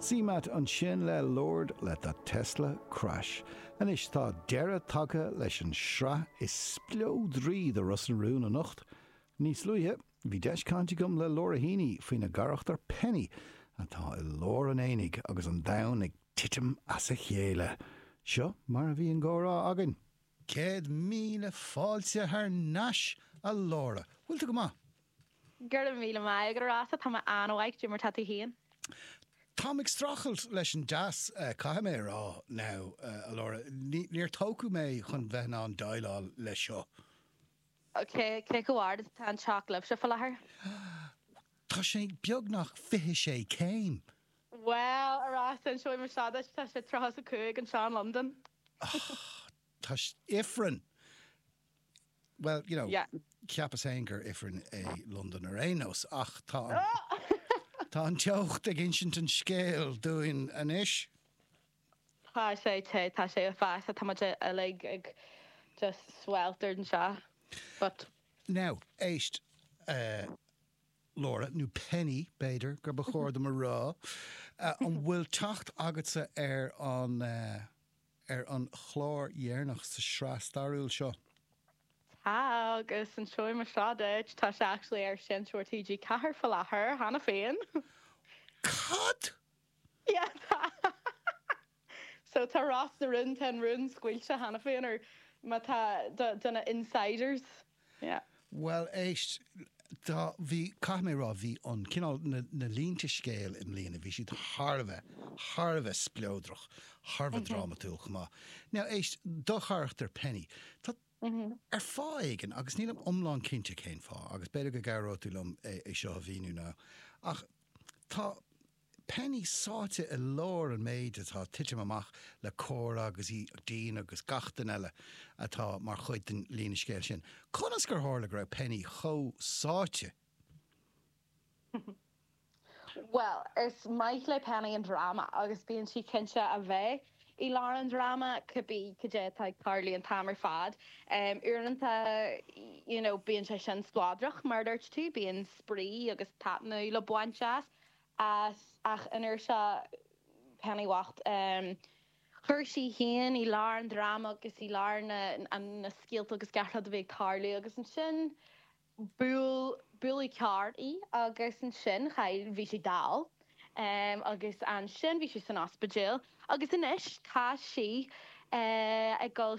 CMAT ansin le Lord Let That Tesla Crash. Anois tá deireadh tagtha leis an sraith is spleodraí de Ros na Rún anocht. Níos luaithe, bhí deis caint agam le Laura Heaney faoina gcarachtar Penny, atá i lár an aonaigh agus an domhain ag titim as a chéile. Seo mar a bhí an comhrá againn. Céad míle fáilte thar n-ais, a Laura. Bhfuil tú go maith? Go raibh míle maith agat, a Rossa, tá mé an-mhaith, cad é mar tá tú féin? Táim ag streachailt leis an dteas, caithfidh mé a rá, now, a Laura, níor tógadh mé chun bheith in ann déileáil leis seo. Cé chomh ard is atá an teocht libhse fá láthair? Tá sé beagnach fiche sé céim. Bhuel, a Rossa, inseoidh mé seo duit, tá sé tríocha is a cúig anseo in Londain. Tá Ifreann! Bhuel, you know, Yeah. cheapas féin gur Ifreann é Londain ar aon nós, ach tá an, tá an teocht ag insint an scéil dúinn anois. Tá sé te, tá sé uafásach, tá muid uilig ag just sweltered anseo, but. Now, éist, eh, Laura, nó Penny, b'fhéidir gur ba chóir dom a rá, eh, an bhfuil teacht agatsa ar an, eh, ar an chlár dheireanach sa sraith stairiúil seo. Tá, agus inseoidh mé seo duit, tá sé actually ar sheinnteoir TG Ceathair faoi láthair, cheana féin! Cad? Yeah, tá! So, tá Ros na Rún, tá an rún scaoilte cheana féin, nó má tá, do na insiders. Yeah. Bhuel, éist, tá, bhí, caithfidh mé a rá, bhí an cineál, na, na línte scéil i mbliana, bhí siad thar a bheith, thar a bheith spleodrach, thar a bheith drámatúil chomh maith. Now, éist, do charachtar Penny, tá, ar fáth éigin, agus nílim iomlán cinnte cén fáth, agus b'fhéidir go gcabhróidh tú liom é, é seo a mhíniú now, ach tá, Penny sáite i lár an méid atá ag titim amach le Cora agus í, Dean agus gach duine eile atá mar chuid den líne scéil sin. Conas gur tharla go raibh Penny chomh sáite? Bhuel, is maith le Penny an dráma agus bíonn sí cinnte a bheith i lár an dráma cibé cad é atá ag tarlú an t-am ar fad. Uaireanta, you know, bíonn sé sin spleodrach, mar a dúirt tú, bíonn spraoi agus taitneamh le baint as. as, ach an uair seo, Penny bhocht. Chuir sí í féin i lár an dráma agus i lár na scéalta agus gach rud a bhí ag tarlú agus ansin bhuail carr í agus ansin chaill, bhí sí dall agus ansin bhí sí san ospidéal agus anois tá sí ag dul,